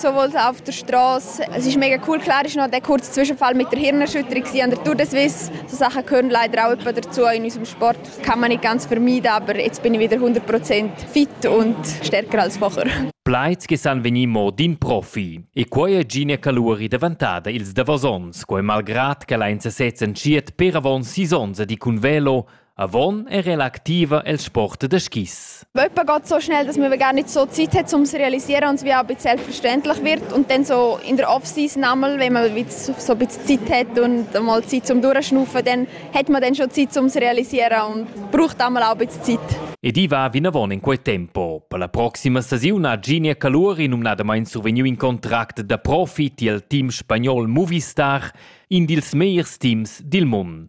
so wohl auf der Straße. Es ist mega cool. Klar ist noch der kurze Zwischenfall mit der Hirnerschütterung an der Tour de Suisse. So Sachen gehören leider auch etwa dazu in unserem Sport. Das kann man nicht ganz vermeiden, aber jetzt bin ich wieder 100% fit und stärker als vorher. Plaid che san venir mo d'in profi. E quei è Gine Caluri davantada ils davos onns, quei malgrad che la in sesez entschiet per avon sis onns di cun velo Avon era ella activa el sport da skis. Jemand geht so schnell, dass wir gar nicht so Zeit haben, um zu realisieren und es wie auch ein bisschen selbstverständlich wird. Und dann so in der Off-Season einmal, wenn man so ein bisschen Zeit hat und mal Zeit zum Durchschnaufen, dann hat man dann schon Zeit um zu realisieren und braucht einmal auch ein bisschen Zeit. Ed i va vinavon in quei tempo. Per la proxima stagiun ha Ginia Caluri numnadamain survegniu in contract da profi tiel team spagnol Movistar, in dils megliers teams dil mund.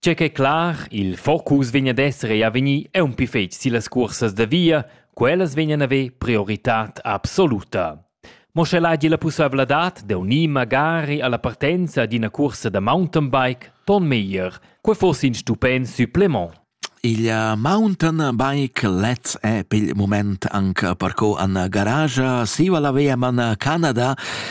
Tgei ch'ei clar, il focus vegn ad esser ei a vegnir aunc fetg sillas cursas da via, quellas vegnan a haver prioritad absoluta. Mo sche el hagi la pusseivladad da unir magari alla partenza ad ina cursa da mountainbike, ton meglier. Quei foss in stupent supplement. Il mountain bike Let's è pel moment anche per co an garage siva la vea man Canada